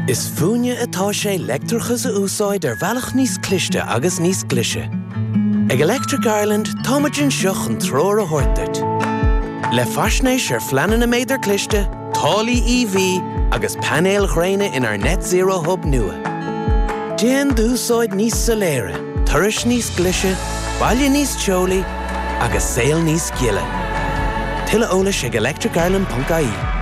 Is fúinne atá sé leictreachas a úsáid ar bhealach níos cliste agus níos glaise. Ag Electric Ireland, táimid anseo chun treoir a thabhairt duit. Le faisnéis ar phleananna méadar cliste, taraifí EV agus painéil ghréine inár Net Zero Hub nua. Déan d'úsáid níos soiléire, turais níos glaise, baile níos teolaí agus saol níos gile. Tuilleadh eolais ag electricireland.ie.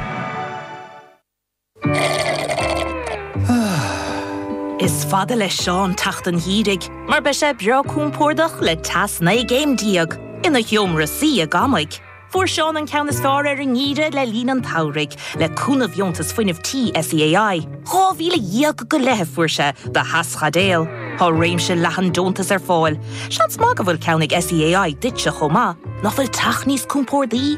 Is fada le Seán teacht an gheimhridh mar beidh sé breá compordach le teas 19 gcéim ina sheomra suí i gcónaí. Fuair Seán an ceann is fearr ar an ngeimhreadh le linn an tsamhraidh le cúnamh dheontas fuinnimh tí SEAI. €12,000 go leith a fuair sé do theaschaidéal. Tá réimse leathan deontas ar fáil. Seans maith go bhfuil ceann ag SEAI duitse chomh maith. Nach bhfuil teach níos compordaí?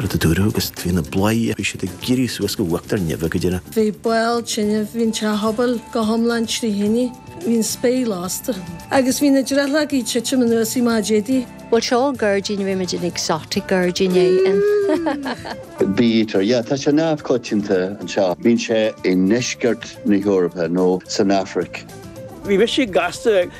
rud a dúradh agus bhí na bladhairí bhí siad ag éirí suas go uachtar neimhe go dtí na. Bhí baol tine, bhí an teach pobail go hiomlán trí thine, bhí an spéir lasta agus bhí na drithleogaí ag titim anuas í má d'fhéadtaí. Bhuel seo gairdín, rimid in exotic gairdín é in. Bítear, yeah, tá sé neamhchoitianta anseo. Bíonn sé i ndeisceart na hEorpa nó san Afraic. Bhí mise gasta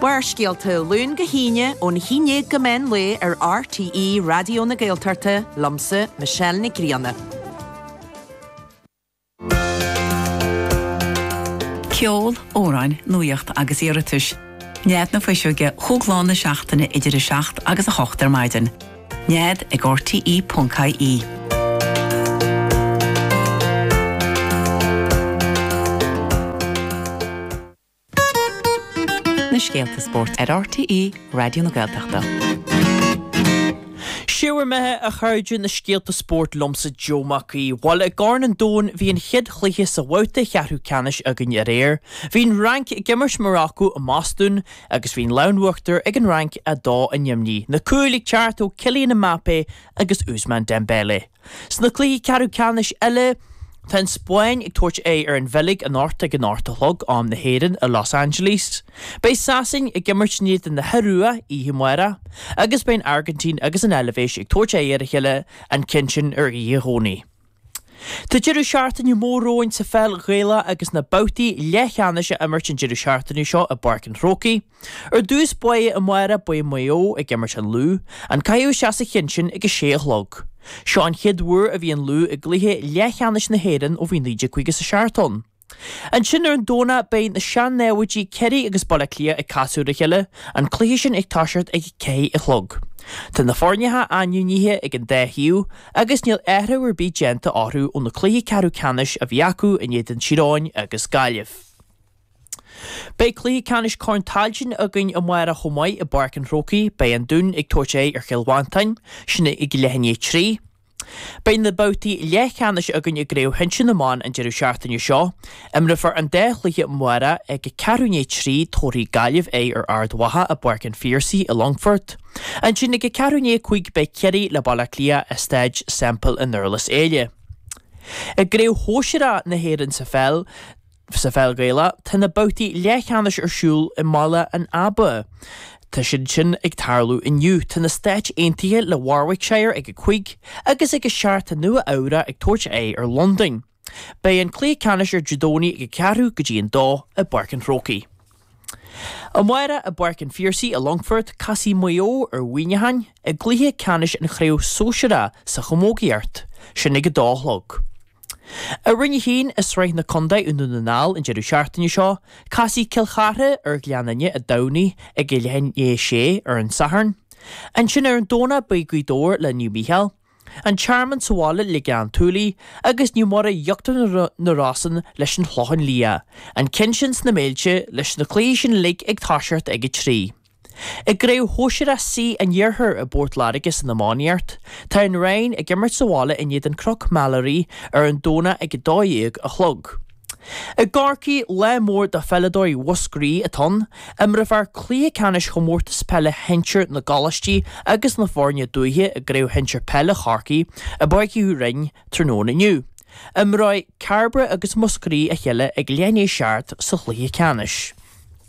Barrscéalta, Ó Luan go hAoine, ón haon déag go meán lae ar RTÉ Raidió na Gaeltachta, liomsa, Michelle Nic Grianna. Ceol, amhráin, nuaíocht agus iarratais. Nead na Fuiseoige cúig lá na seachtaine idir 7 agus 8 ar maidin. Nead ag rte.ie. na scéalta spóirt ar RTÉ Raidió na Gaeltachta. Is é bhur mbeatha a chairde na scéalta spóirt liomsa Joe Mac Aoidh. Bhuel i gCorn an Domhain bhí an chéad chluiche sa bhabhta cheathrú ceannais againn aréir. Bhí an Fhrainc ag imirt Morocco i mBostún agus bhí an lámh in uachtar ag an Fhrainc 2 in éadan neamhní. Na cúil ag teacht ó Kylian Mbappé agus Ousmane Dembélé. Sna cluichí ceathrú ceannais eile, tá an Spáinn ag tabhairt aghaidh ar an Bheilg anocht ag an hocht a chlog, am na hÉireann, i Los Angeles. Beidh Sasana ag imirt in éadan na hIorua oíche amárach agus beidh an Airgintín agus an Eilbhéis ag tabhairt aghaidh ar a chéile an Chéinsian ar oíche Dhomhnaigh. Tá deireadh seachtaine mór romhainn sa pheil Ghaelach agus na babhtaí leathcheannais á n-imirt an deireadh seachtaine seo i bPáirc an Chrócaigh. Ar dtús báire amárach beidh Maigh Eo ag imirt an Lú, an caitheamh isteach sa cheann sin ag a sé a chlog. Seo an chéad uair a bhí an Lú i gcluiche leathcheannais na hÉireann ó bhí 1957 ann. Ansin ar an Domhnach beidh na sean-námhaidí Ciarraí agus Baile Átha Cliath ag casadh ar a chéile, an cluiche sin ag toiseacht ag a ceithre a chlog. Tá na foirneacha ainmnithe ag an dá thaobh agus níl athrú ar bith déanta orthu ó na cluichí ceathrú ceannais a bhí acu in éadan Thír Eoghain agus Gaillimh. Beidh cluiche ceannais Corn Tailteann againn amáireach chomh maith i bPáirc an Chrócaigh. Beidh an Dún ag tabhairt aghaidh ar Chill Mhantáin, sin ag leath i ndiaidh a 3. Beidh na babhtaí leathcheannais againn i gCraobh Shinsir na mBan an deireadh seachtaine seo. Imreofar an dá chluiche amárach ag a ceathrú i ndiaidh a 3 tabharfaidh Gaillimh aghaidh ar Ard Mhacha i bPáirc an Phiarsaigh i Longfort. Ansin ag a ceathrú i ndiaidh a cúig beidh Ciarraí le Baile Átha Cliath i Staid Semple i nDurlas Éile. I gCraobh Shóisearach na hÉireann sa Pheil, Sa pheil Ghaelach, tá na babhtaí leathcheannais ar siúl i mBaile an Aba. Tá siad sin ag tarlú inniu. Tá na Stáit Aontaithe le Warwickshire ag a cúig agus ag a seacht tá Nua-Eabhrac ag tabhairt aghaidh ar Londain. Beidh an cluiche ceannais ar Dé Domhnaigh ag a ceathrú go dtí an dó i bPáirc an Chrócaigh. Amárach i bPáirc an Phiarsaigh i Longfort, casfaidh Maigh Eo ar Mhuineachán i gcluiche ceannais an chraobh sóisir 'A' sa chamógaíocht. Sin ag a dó a chlog. I Roinn 1 i Sraith na Contae i nDún na nGall an deireadh seachtaine seo, casfaidh Cill Chartha ar Ghleann Fhinne i dTamhnaigh ag a leath i ndiaidh a sé ar an Satharn. Ansin ar an Domhnach beidh Gaoth Dobhair le Naomh Mícheál. An Tearmann sa bhaile le Gleann tSúilí agus Naomh Muire Íochtar na Rosann leis an Chlochán Liath, an ceann sin sna Méilte leis na cluichí sin uilig ag toiseacht ag a trí. I gcraobh shóisearach C an Iarthair i bPort Láirge san iománaíocht, tá an Rinn ag imirt sa bhaile in éadan Cnoc Mheilearaí ar an Domhnach ag a dó dhéag a chlog. I gCorcaigh, lá mór do pheileadóirí Mhúscraí atá ann. Imreofar cluiche ceannais Chomórtas Peile Shinsir na gColáistí agus na foirne dúiche i gCraobh Shinsir Peile Chorcaí i bPáirc Uí Rinn tráthnóna inniu. Imreoidh Cairbre agus Múscraí a chéile ag leath i ndiaidh a seacht sa chluiche ceannais.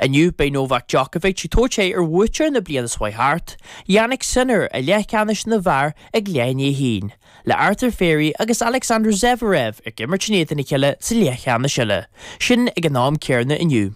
Inniu beidh Novak Djokovic ag tabhairt aghaidh ar bhuaiteoir na bliana seo chuaigh thart, Jannik Sinner i leathcheannais na bhfear ag leath i ndiaidh a haon, le Arthur Fery agus Alexander Zverev ag imirt in éadan a chéile sa leathcheannais eile, sin ag an am céarna inniu.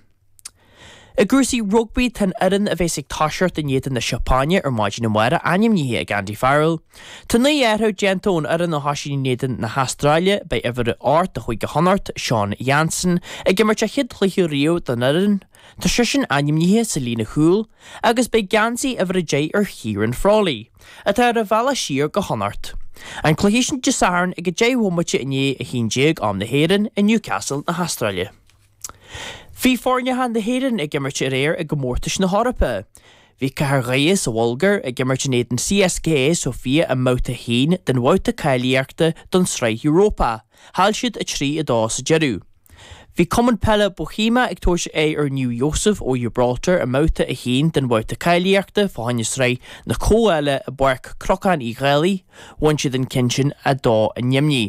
I gcúrsaí rugbaí, tá an fhoireann a bheas ag toiseacht in éadan na Seapáine ar maidin amárach ainmnithe ag Andy Farrell, Tá naoi athrú déanta ón fhoireann a thosaigh in éadan na hAstráile. Beidh uimhir a 8 de Chúige Chonnacht, Seán Jansen, ag imirt a chéad chluiche riamh don fhoireann, tá seisean ainmnithe sa líne chúil, agus beidh geansaí uimhir a deich ar Chiarán Frawley, atá ar a bhealach siar go Connacht. An cluiche sin Dé Sathairn ag a deich bhomaite i ndiaidh a haon déag, am na hÉireann, i Newcastle na hAstráile. Bhí foirneacha na hÉireann ag imirt aréir i gcomórtais na hEorpa. Bhí Cathair Dhoire sa Bhulgair ag imirt in éadan CSKA Sofia i mbabhta a haon den bhabhta cáilíochta don tSraith Europa. Chaill siad 3, 2 sa deireadh. Bhí Cumann Peile Bohemian ag tabhairt aghaidh ar Naomh Iósaef ó Giobráltar i mbabhta a haon den bhabhta cáilíochta fá choinne Sraith na Comhdhála i bPáirc Chnocán Uí Dhálaigh. Bhain siad an ceann sin 2, 0.